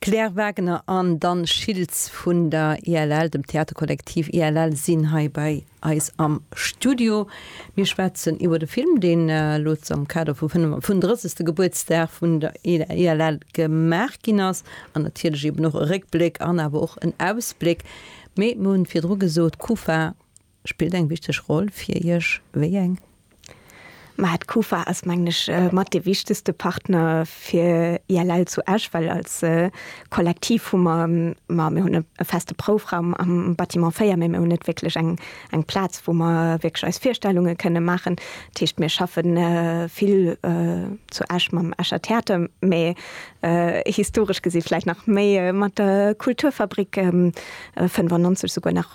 D'Claire Wagener an Dan Schiltz vun der ILL, dem Theaterkollektiv ILL, sinn hei bei eis am Studio. Mir schwätzen iwwer de Film, deen elo am Kader vum 35. Gebuertsdag vun der ILL gemaach ginn ass, an natierlech eeben och e Réckbléck an awer och en Ausbléck. Mee mir hunn virdru gesot, Kufa, Spillt eng wichteg Roll fir Iech? Wéi eng? Mä d'Kufa ass mengen ech mat dee wichtegste Partner fir ILL zu Esch, well als Kollektiv hu mer, ma mir hunn e feste Proufraum am Bâtiment 4, mä mir hunn net wierklech eng Plaz wou mer wierklech eis Virstellunge kënne maachen. Dat heescht mir schaffe vill zu Esch mam Escher Theater, mä historesch gesi vläicht nach méi mat der Kulturfabrik 95 souguer nach.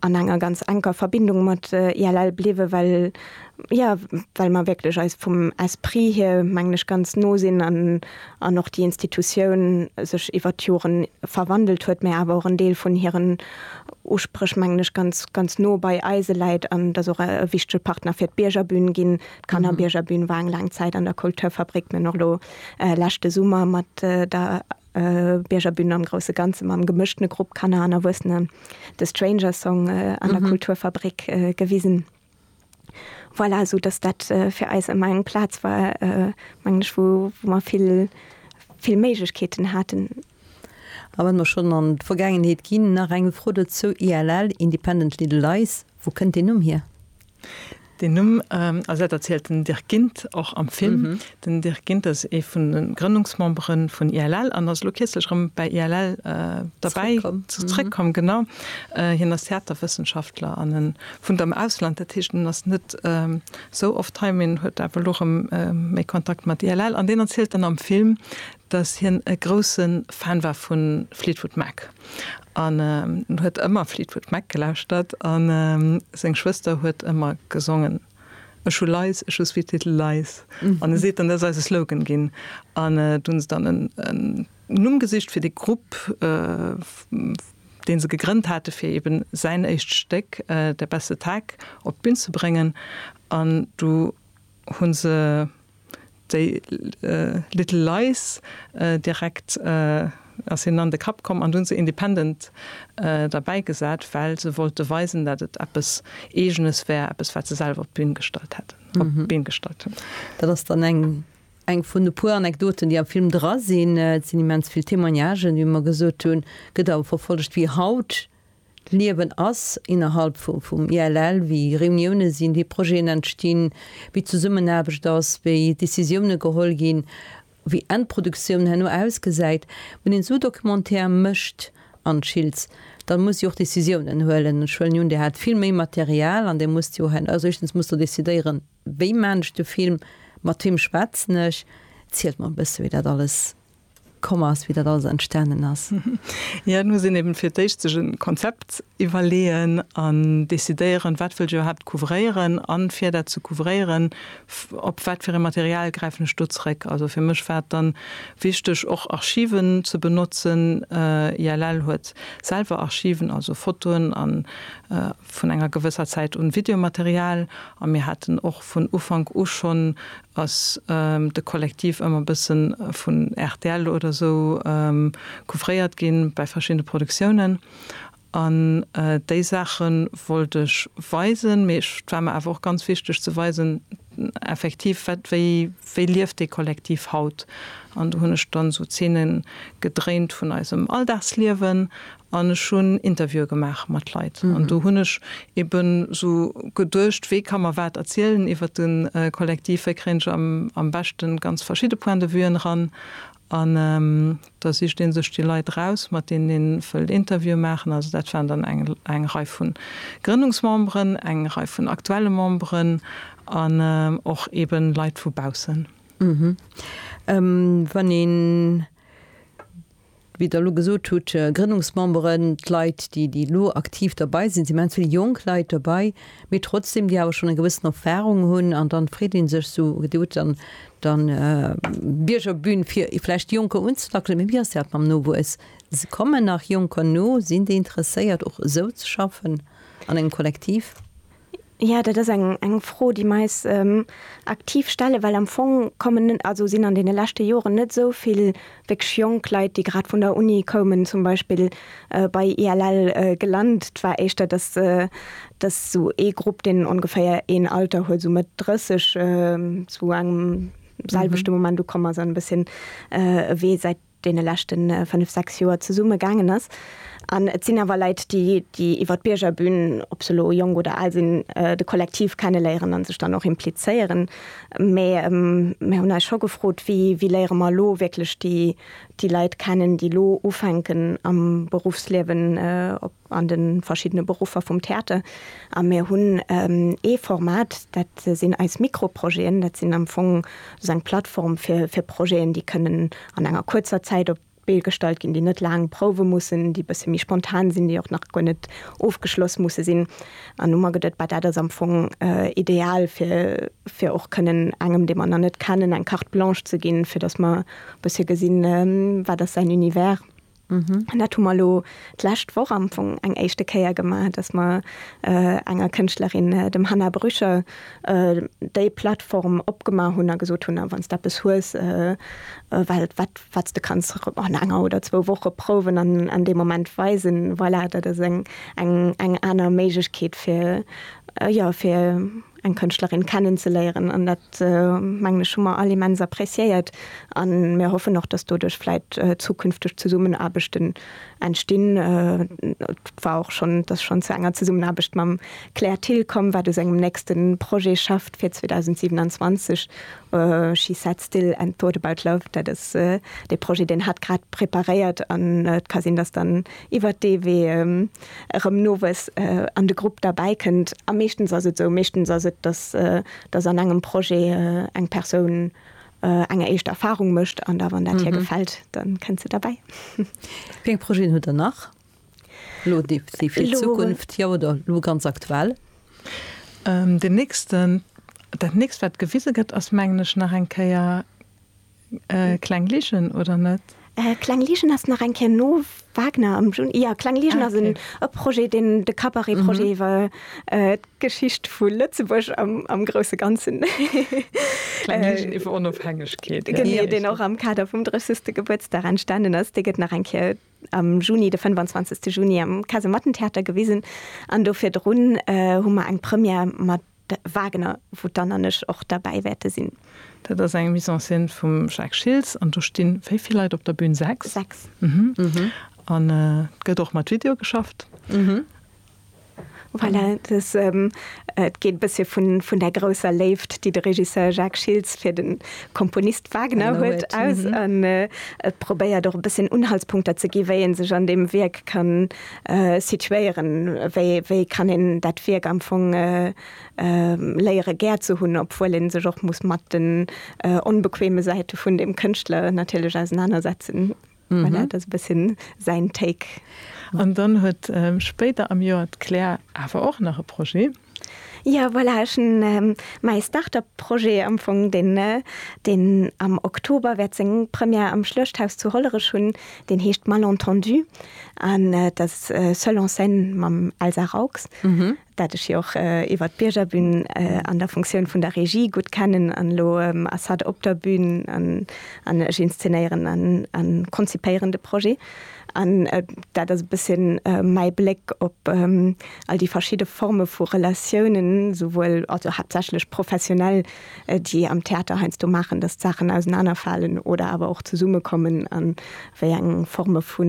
an enger ganz enker Verbindung mat ILL bliwen, well, jo, well mer wierklech eis vum Esprit hier, mengen ech, ganz no sinn an, an och déi Institutioun sech iwwert d'Jore verwandelt huet, mä awer och en Deel vun hiren Uspréch, mengen ech, ganz, ganz no bei eise läit an dass och e wichtege Partner fir d'Biergerbün ginn. D'Kannerbiergerbün war eng laang Zäit an der Kulturfabrik, mä och elo leschte Summer mat der Biergerbün am grousse Ganze mam gemëschtene Grupp Kanner an Erwuessene The Stranger Song an der Kulturfabrik gewisen. Voilà, esou datt dat fir eis ëmmer eng Plaz war, mengen ech, wou mer vill, vill Méiglechkeeten haten. A wa mer schonn an d'Vergaangenheet ginn, nach eng Fro dozou, ILL, Independent Little Lies, wou kënnt deen Numm hier? Deen Numm, also dat erzielt den Dirk Gindt och am Film, den Dirk Gindt ass ee vun de Grënnungsmembere vun ILL an ass elo kierzlech erëm bäi ILL derbäi zrëckkomm, genau. Hien ass Theaterwëssenschaftler an e wunnt am Ausland, dat heescht en ass net esou oft hei, mee en huet awer elo erëm méi Kontakt mat ILL an deen erzielt dann am Film, dass hien e grousse Fan war vu Fleetwood Mac an huet ëmmer Fleetwood Mac gelauschtert a seng Schwëster huet ëmmer gesongen, Ech hu Lice, ech hu Sweet Little Lice an e seet dann, dat ass eise Slogan ginn an do hunn se dann en Numm gesicht fir de Grupp, dee se gegrënnt hate fir eben säin éischt Stéck Der beste Tag op d'Bün ze bréngen an du hu se. Déi Little Lies, direkt ass hinnen an de Kapp komm an du hunn se independent derbäi gesat, well se wollte weisen, dat et eppes Eegenes wär, eppes wat se selwer op d'Bün gestallt hunn. Dat ass dann eng vun e puer Anekdoten, déi am Film dra sinn. Et sinn immens vill Témoignagen, wéi mer gesot hunn, gëtt awer verfollegt wéi haut D'Liewen ass innerhalb vum ILL, wéi Reuniounen sinn, wéi Projeten entstinn, wéi d'Zesummenaarbecht ass, wéi Decisiounen geholl ginn, wéi Endproduktioun herno ausgesäit. Wann een esou Documentaire mécht, Anne Schiltz, da musst Dir och Decisiounen huelen. Ech huelen un, Dir hat vill méi Material an Dir musst jo herno, also éischtens musst Der decidéieren, wéi maan ech de Film, mat weem schwätzen ech, zielt mol e bësse wéi dat alles. komm ass, wéi dat alles entstanen ass. Jo, et muss een eben fir d'éischt sech e Konzept iwwerleeën an decidéieren, wat wëll ech iwwerhaapt couvréieren an fir dat ze couvréieren, op wat fir e Material gräifen ech do zréck. Also fir mech war et dann wichteg, och Archiven ze benotzen. ILL huet selwer Archiven, also Fotoen a vun enger gewësser Zäit un Videomaterial. A mir haten och vun Ufank u schonn ass de Kollektiv ëmmer bëssen vun rtl oder sou couvréiert ginn bäi verschiddene Produktiounen an déi Saache wollt ech weisen, mee ech, et war mer awer och ganz wichteg ze weisen effektiv wat, wéi, wéi lieft dee Kollektiv haut an do hunn ech dann sou Zeene gedréint vun eisem Alldagsliewen An ech hunn Interviewe gemaach mat Leit. An do hunn ech eben esou geduecht, wee ka mer wat erzielen iwwer de Kollektiv, wéi kréien ech am beschte ganz verschidde Point de vuen eran. An da sicht ee sech déi Leit eraus, mat deenen ee wëllt Interviewe maachen. Also dat waren dann eng Rei vu Grënnungsmemberen, eng Rei vun aktuelle Memberen an och eben Leit vu baussen. Wann een wéi Der elo gesot hutt, d'Grënnungsmemberen, d'Leit, déi elo aktiv derbei sinn, sinn immens vill jonk Leit derbei, mee trotzdeem, déi awer schonn eng gewëssen Erfahrung hunn. An dann freet ee sech esou, Dir hutt dann dann d'Biergerbün, fir vläicht Jonker unzelackelen, mee wéi ass dat mam Nowuess? Kommen nach Jonker no? Sinn déi interesséiert, och esou ze schaffen an engem Kollektiv? Jo, dat ass eng Fro, déi mer eis aktiv stellen, well am Fong kommen, also sinn an deene leschte Joren net esou vill wierklech jonk Leit, déi grad vun der Uni koumen, zum Beispill bei ILL gelant. Et war éischter, dass esou ee Grupp, deen ongeféier een Alter huet, esou Mëtt 30, zu engem selwechte Moment ukomm ass an e bësschen ewee säit deene leschte fënnf, sechs Joer zesumme gaangen ass. An et sinn awer Leit, déi, déi iwwer d'Biergerbün, ob se elo jonk oder al sinn, de Kollektiv kenneléieren a sech dann och implizéieren. Mä mir hunn eis scho gefrot, Wéi, wéi léiere mer elo wierklech déi, déi Leit kennen, déi elo ufänken am Beruffsliewen, ob. an de verschiddene Beruffer vum Theater a mir hunn ee Format, dat sinn eis Mikroprojeten. Dat sinn am Fong sou eng Plattform fir Projeten, déi kënnen an enger kuerzer Zäit op d'Bee gestallt ginn, déi net laang prouwe mussen, déi e bësse méi spontan sinn, déi och nach guer net ofgeschloss musse sinn. An hu mer geduet, bah dat ass am Fong ideal fir och kënnen engem, dee mer nach net kennen, eng Carte blanche ze ginn, fir datt mer e bësse gesinn, wat ass säin Univers. Mhm. An dat hu mer elo d'lescht Woch am Fong eng éischte Kéier gemaach, dass mer äh, enger Kënschtlerin, äh, dem Hannah Brücher, äh, déi Plattform opgemaach hunn a gesot hunn, a wann s de eppes hues, äh, äh, well wat, wat s de kanns an enger oder zwou Woche prouwen an an deem Moment weisen, voilà, dat ass eng, eng, eng aner Méiglechkeet fir, äh, jo, fir, eng Kënschtlerin kennen ze léieren an dat mengen ech hu mer all immens appréciéiert a mir hoffen och, dass doduerch vläit zukünfteg Zesummenaarbechten entstinn. Et war och schonn, et ass schonn zu enger Zesummenaarbecht mam Claire Thill komm, wat u sengem nächste Projet schafft fir 2027, She Sat Still and Thought About Love. Dat ass dee Projet, deen hatt grad preparéiert an et ka sinn, dass dann iwwert dee Wee erëm nowes an de Grupp derbäi kënnt. A meeschtens ass et esou, meeschtens ass et, dass, dass an engem Projet eng Persoun eng éischt Erfarung mécht an da, wann dat hir gefält, da kënnt se derbäi. Wéi eng Projeten hutt Der nach elo, déi fir d'Zukunft, jo oder elo ganz aktuell? Deen nächsten, dat nächst wat gewise gëtt ass mengen ech nach eng Kéier, Kleng Ligen oder net? Kleng Ligen ass nach eng Kéier no Wagner am Juni. Jo, Kleng Ligen ass e Projet, deen de Cabaret-Projet iwwer d'Geschicht vu Lëtzebuerg am grousse Ganzen. Kleng Ligen iwwer Onofhängegkeet. Genee, deen och am Kader vum 30. Gebuertsdag entstanen ass. Dee gëtt nach eng Kéier am Juni, de 25. Juni am Kasemattentheater gewisen. An do virdrun hu mer eng Première mat De Wagner, wou d'Anne an ech och derbäi wäerte sinn. Dat ass eng Mise en scène vum Jacques Schiltz an do sti wéi vill Leit op der Bühn? Sechs? Sechs. An et gëtt och mat Video geschafft. Voilà, dass et geet e bëssche vun där grousser Léift, déi de Regisseur Jacques Schiltz fir de Komponist Wagner huet, aus. An et probéiert och e bësschen Unhaltspunkter ze gi wéi ee sech an deem Wierk kann situéieren, wéi kann een dat Wierk am Fong léiere gär ze hunn, obwuel ee sech och muss mat den onbequeme Säite vun deem Kënschtler natierlech ausenanersetzen. Voilà, dat ass e bësse säin Take. An dann huet spéider am Joer d'Claire awer och nach e Projet. Jo voilà, ech hunn mäi Start-up Projet am Fong, deen deen am Oktober wäert seng Première am Schluechthaus zu Hollerech hunn, deen heescht Malentendu an et ass Seul en scène mam Elsa Raux, dat ech jo och iwwert d'Biergerbün an der Funktioun vun der Regie gutt kennen an elo ass hatt op der Bün an ech inszenéieren a konzipéieren de Projet an dat ass e bësschen mäi Bléck op All déi verschidde Forme vu Relatiounen, souwuel, also haaptsächlech professionell, déi am Theater heiansdo maachen, datt d'Saachen ausenanerfalen oder awer och zesummekommen a wéi eng Forme vu,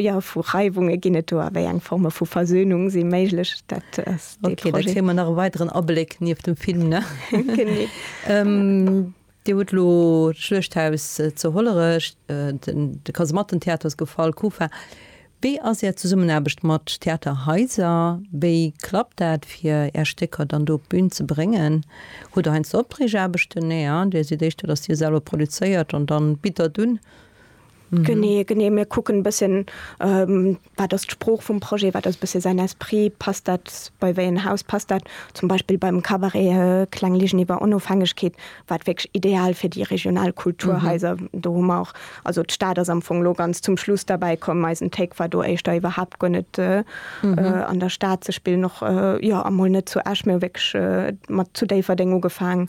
jo, vu Reiwunge ginn et do a wéi eng Forme vu Versönung si méiglech, dat ass dee Projet. Ok, da kréie mer nach e weideren Abléck nieft dem Film, ne? Genee. Dir hutt elo d'Schluechthaus zu Hollerech, de Kasemattentheater ass gefall, KuFa. Wéi ass Är Zesummenaarbecht mat Theaterhaiser? Wéi klappt dat, fir Är Stécker dann do op d'Bün ze bréngen? Hutt Der heiansdo Opdreegaarbechten? Nee, hein? Dir sidd éischter, dass Dir selwer produzéiert an dann bitt Der et un? Genee, genee. Mir kucken e bësschen, wat ass d'Sprooch vum Projet, wat ass e bësse säin Esprit, passt dat bei wéi en Haus, passt dat zum Beispill beim Kabaret Kleng Ligen iwwer Onofhängegkeet, wat wierklech ideal fir déi regional Kulturhaiser. Do hu mer och, also d'Stad ass am Fong elo ganz zum Schluss derbäi komm, eisen Take war do éischter iwwerhaapt guer net an der Stad ze spillen, och jo, emol net zu Esch, mir hu wierklech mat zu Déifferdeng ugefaangen.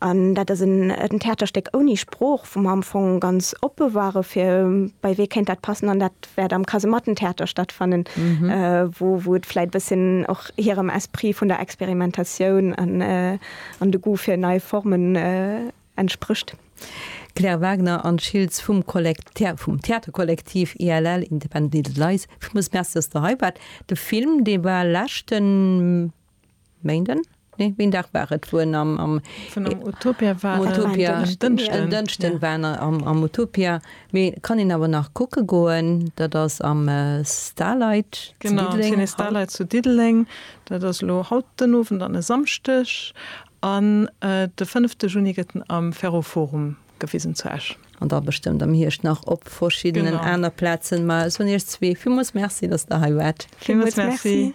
An dat ass en Theaterstéck ouni Sprooch, wou mer am Fong ganz oppe ware fir, bei wee kéint dat passen. An dat wäert am Kasemattentheater stattfannen, wou et vläit e bësschen och hirem Esprit vun der Experimentatioun an de Goût fir nei Formen entsprécht. D'Claire Wagner, Anne Schiltz vum Theaterkollektiv ILL, Independent Little Lies, villmools Merci, dass Der hei waart. De Film, dee war leschte. Méinden? Nee, wéi en Dag war et, wou en am, am. Vun am Utopia war. Am Utopia. War en Dënschden. En Dënschden war en am, am Utopia. Mee et kann een awer nach kucke goen. Dat ass am Starlight zu Diddeleng. Genau, am Ciné Starlight zu Diddeleng. Dat ass elo haut den Owend an e Samschdeg. An de fënnefte Juni gëtt en am Ferroforum gewisen zu Esch. An da bestëmmt am Hierscht nach op verschiddenen aner Plazen. Mä ech soen Iech zwee villmools Merci, datt Der hei waart. Villmools Merci.